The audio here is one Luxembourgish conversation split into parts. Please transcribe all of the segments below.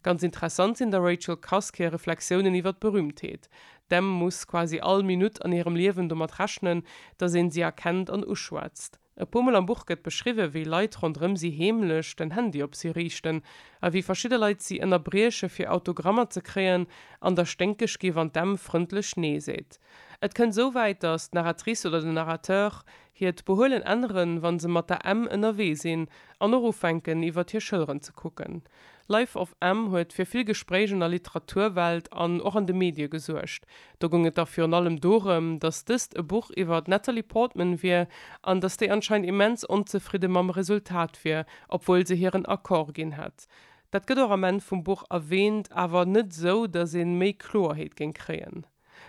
Ganz interessant sinn der Rachel Cusk hir Reflexiounen iwwer d'Berühmtheet. D'Em muss quasi all Minutt an hirem Liewen domat rechnen, dass een si erkennt an uschwätzt. E puer Mol am Buch gëtt beschriwwen, wéi Leit ronderëm si heemlech den Handy op si riichten a wéi verschidde Leit si ënnerbrieche fir Autogrammer ze kréien an der sténkeg gi wann d'Em frëndlech Nee seet. Et kënnt esou wäit, dass d'Narratrice oder den Narrateur hiert Behuelen änneren, wa se mat der Em ënnerwee sinn an och ufänken iwwer hir Schëlleren ze kucken. Life of M huet fir vill Gespréich an der Literaturwelt an och an de Medie gesuergt. Do goung et da virun allem dorëm, datt dëst e Buch iwwer d'Natalie Portman wier an datt déi anscheinend immens onzefridde mam Resultat wier, obwuel se hiren Accord ginn hätt. Dat gëtt och am Enn vum Buch erwäänt, awer net esou, datt ee méi Kloerheet géing kréien.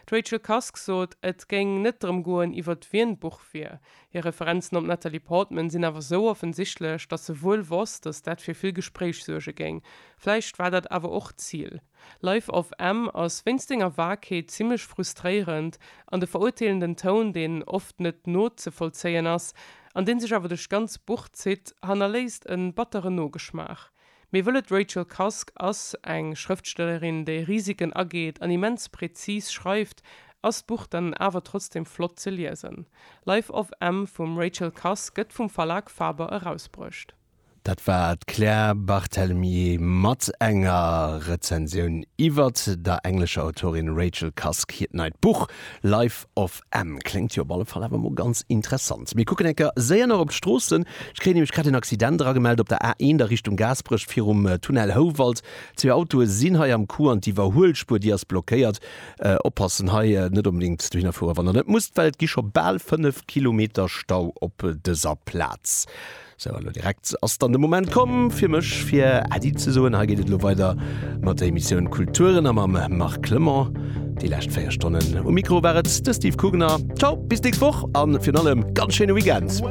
D'Rachel Cusk sot, et géing net drëm goen, iwwert wien d'Buch wier. Hir Referenzen op d'Natalie Portman sinn awer sou offensichtlech, datt se wuel wosst, datt dat fir vill Gespréich suerge géing. Vläicht war dat awer och d'Zil. Life of M ass wéinst senger Vagheet zimmlech frustréierend, an de verurteelenden Toun, deen oft net nozevollzéien ass, an dee sech awer duerch d'ganz Buch zitt, hannerléisst e batteren Nogeschmaach. Mir wëllen D'Rachel Cusk ass eng Schrëftstellerin, déi Risiken ageet an immens präzis schreift. Ass d'Buch dann awer trotzdem flott ze liesen? Life of M vum Rachel Cusk gëtt vum Verlag Faber erausbruecht. Dat war d'Claire Barthelemy mat enger Rezensioun iwwert der englescher Autorin Rachel Cusk hiert neit Buch Life of Ehm, kléngt jo op alle Fall awer mol ganz interessant. Mir kucken eng Kéier séier nach op d'Stroossen. Ech kréien nämlech grad en Accident eragemellt op der A1 a Richtung Gaasperech virum Tunnel Houwald. Zwee Autoe sinn hei am Coup an d'Iwwerhuelspuer, déi ass blockéiert. Oppassen hei net onbedéngt dohinner fueren, wann Der net musst, well et gi scho bal 5 Kilometer Stau op dëser Plaz. Sou, a lo direkt ass dann de Moment komm fir mech fir Äddi ze soen. Hei geet et elo weider mat der Emissioun Kulturen a mam Marc Clement. Déi lescht 4 Stonnen um Mikro war et de Steve Kugner. Ciao, bis d'nächst Woch a virun allem ganz schéine Weekend!